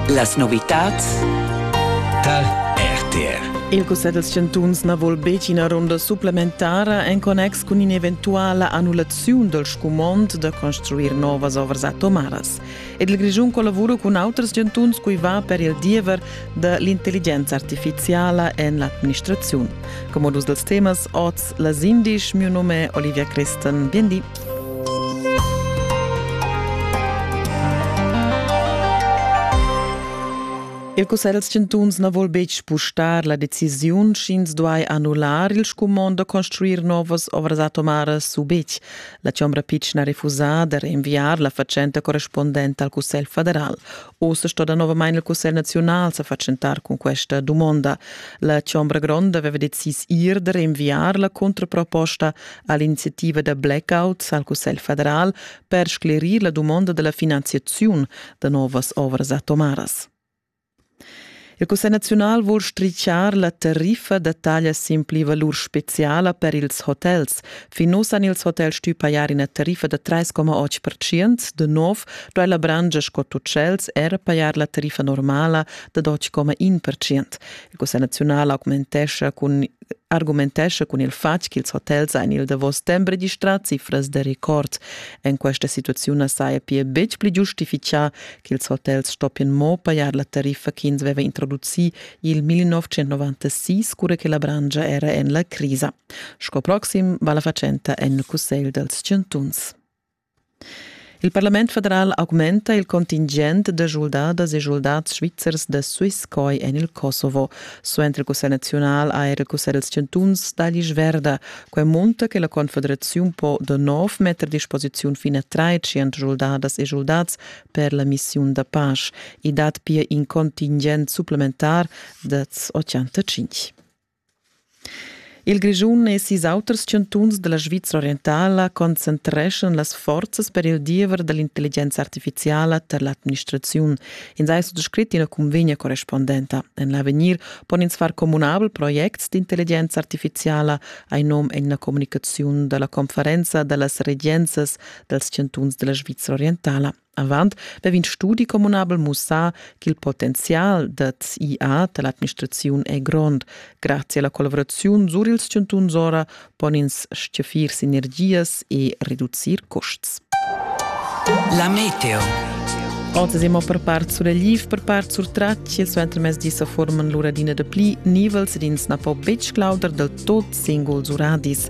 Las novitads tal RTR. Il Cussegl dels chantuns na vul betg ina runda supplementara en connex cun in'eventuala annullaziun dal scumond da construir novas ovras atomaras. Ed il Grischun collavura cun auters chantuns cui va per il diever da l'intelligenza artificiala en l'administraziun. Come modus dels temas oz las indisch, mio nome è Olivia Christen. Bien di. Il Cussegl chantuns na vul betg spustar la decisiun sch'ins duai annullar il scumond da construir novas ovras atomaras u betg. La Chombra Pitschen ha refusà da rinviar la fatschenta correspondenta al Cussegl federal. Ossa sto danovamain il Cussegl naziunal sa fatschentar cun questa dumonda. La Chombra Gronda aveva decis ir da rinviar la contraproposta ha l'iniziativa da blackout al Cussegl federal per sclerir la dumonda della finanziaziun da novas ovras atomaras. Il Cussegl naziunal vul stricciar la tariffa da taglia sin pli-valur speciala per ils hotels. Fin uss han ils hotels stuì pajar ina tariffa da 3,8%. De nov duai la brangia sco utschels era pajar la tariffa normala da 2,1%. Il Cussegl naziunal augmentescha cun argumentescha cun il fatg ch'ils hotels ein il davos stembre distrats cifras da record. En questa situaziun na saja pia betg pli giustifichà ch'ils hotels stoppien mo pajar la tariffa ch'ins veva introducì il 1996, cura che la brangia era en la crisa. Sco proxim va la fatschenta en il Cussegl dals chantuns. Il parlament federal augmenta il contingent da schuldadas e schuldads svizzers da Swisscoy en il Kosovo. Suenter il cussegl naziunal ha era il cussegl dals chantuns d'alis verda. Quai munta che la confederaziun po da nov metter a disposiziun fin a trais schuldadas e schuldats per la missiun da pace. I dat pia in contingent supplementar da 85. Il Grischun e sis auters chantuns dalla Svizra orientala concentreschan las forzas per il diever dall'intelligenza artificiala tar l'administraziun. Ins ei suttascrit ina cunvegna correspondenta. En l'avegnir pon ins far communabel projects d'intelligenza artificiala, hai nom en la communicaziun dalla conferenza dallas regenzas dals chantuns dalla Svizra orientala. Avant vev'in studi communabel mussà ch'il potenzial dad IA da l'administraziun è grond. Grazie alla collaboraziun sur ils chantuns ora pon ins stgaffir sinergias e reducir custs. La meteo. Oz siamo per part sur Liv, per part sur Tracci. Il suentermezdi sa forman l'uradina da pli nivels ed ins na po betg claudar del tot singuls uradis.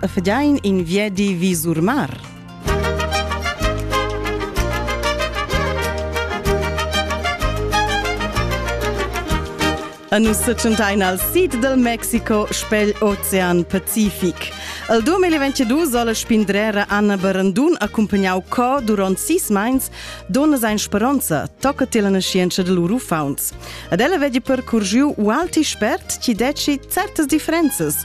e fedain in viedi vi sur mar. A nus setschentain al sid del Mexico spegl Ocean Pacific. El 2022 soll spindrera Anna Berendun accompagnau co durant sis meins donna sein speronza tocca te la scienza de lur ufauns. Ad ella vedi percorgiu u alti spert ci deci certas differenzas